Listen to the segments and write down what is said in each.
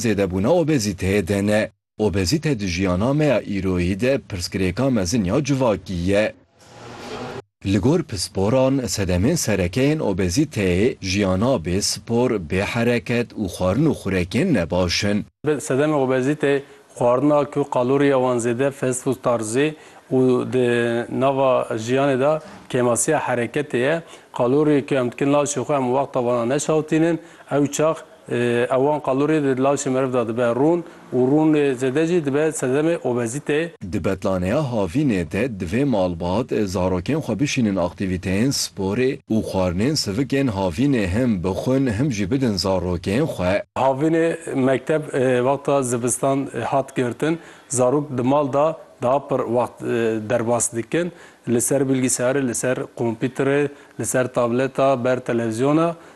Zêdebûna obezîteyê de ne. Obezîte di jiyana me ya îroyî de pirsgirêka mezin ya civakî ye. Li gor pisporan sedemên sereke yên obezîteyê jiyana bê spor, bê hereket û xwarin û xurekên nebaş in. Sedemê obezîteyê xwarin a ku kaloriya wan zêde, fast food tarzî û di nava jiyanê de kêmasiya hereketê ye. Kaloriyê ku em dikin laşê xwe em wexta wana neşewitînin, ew çax Ewan qalurê di lawşê meriv de dibe rûn û rûnê zêde jî dibe sedemê obezîtê. Di betlaneya havînê de divê malbat zarokên xwe bişînin aktîvîteyên sporê û xwarinên sivikên havînê him bixwin him jî bidin zarokên xwe. Havînê mekteb wexta zivistan hat girtin, zarok di mal de daha pir wext derbas dikin, li ser bilgisayarê, li ser kompîterê, li ser tableta, ber televîzyona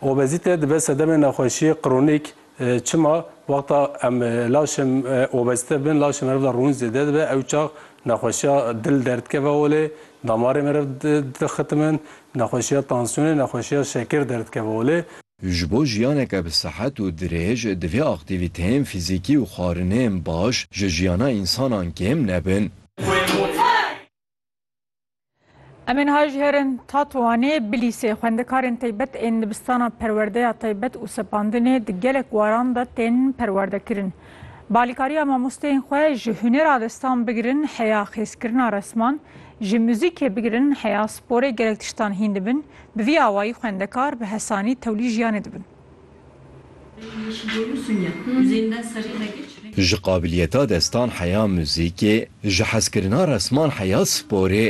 Obezîte dibe sedemê nexweşiyê kronîk. Çima? Wexta em laşên obezîte bin laşê meriv de rûn zêde dibe ew çax nexweşiya dil derdikeve holê, damarê meriv dixitimin, nexweşiya tansiyonê, nexweşiya şekir derdikeve holê. Ji bo jiyaneke bi sihet û dirêj divê aktîvîteyên fîzîkî û xwarinên baş ji jiyana însanan kêm nebin. Em ê niha jî herin Tatoanê, Bilîsê. Xwendekarên taybet ên dibistana perwerdeya taybet û sepandinê di gelek waran de tên perwerdekirin. Bi alîkariya mamosteyên xwe ji hunêra destan bigirin heya xêzkirina resman, ji muzîkê bigirin heya sporê gelek tiştan hîn dibin, bi vî awayî xwendekar bi hesanî tewlî jiyanê dibin. Ji qabiliyeta destan heya muzîkê, ji hezkirina resman heya sporê,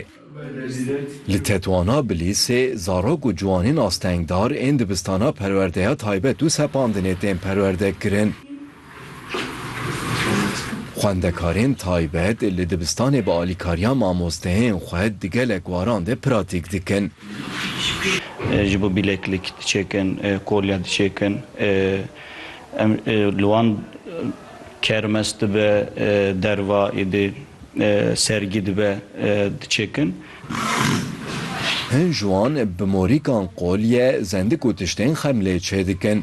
li tetwana bilîsê zarok û ciwanên astengdar ên dibistana perwerdeya taybet û sepandinê tên perwerde kirin. Xwendekarên taybet li dibistanê bi alîkariya mamosteyên xwe di gelek waran de pratîk dikin. Ji bo bileklik diçêkin, kolye diçêkin. Em li wan kermes dibe, derva êdî sergî dibe diçêkin. Hin ji wan bi morîkan kolye, zendik û tiştên xemlê çêdikin.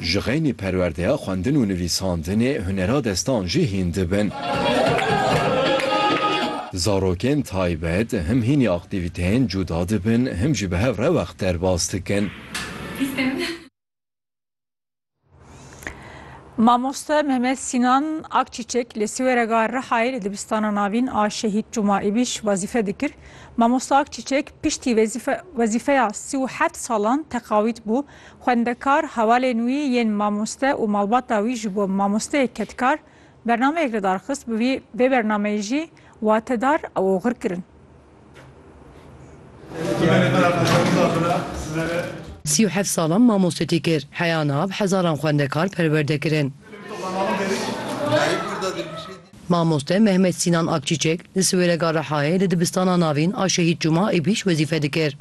Ji xeynî perwerdeya xwendin û nivîsandinê hunera destan jî hîn dibin. Zarokên taybet him hînî aktîvîteyên cuda dibin him jî bi hev re wext derbas dikin. Mamoste Mehmet Sînan Akçîçek li Siwerega Rihayê li Dibistana Navîn a Şehîd Cuma Îbîş wezîfe dikir. Mamoste Akçîçek piştî wezîfeya sî û heft salan teqawît bû Xwendekar, hevalên wî yên mamoste û malbata wî ji bo mamosteyê kedkar bernameyek li dar xist, bi vî vê bernameyê jî watedar ew oxir kirin. Sî û heft salan mamoste tî kir. Heya nav hezaran xwendekar perwerde kirin. Mamoste Mehmet Sînan Akçîçek li Siwêrega Rihayê li dibistana navîn a Şehîd Cuma Îbîş wezîfe dikir.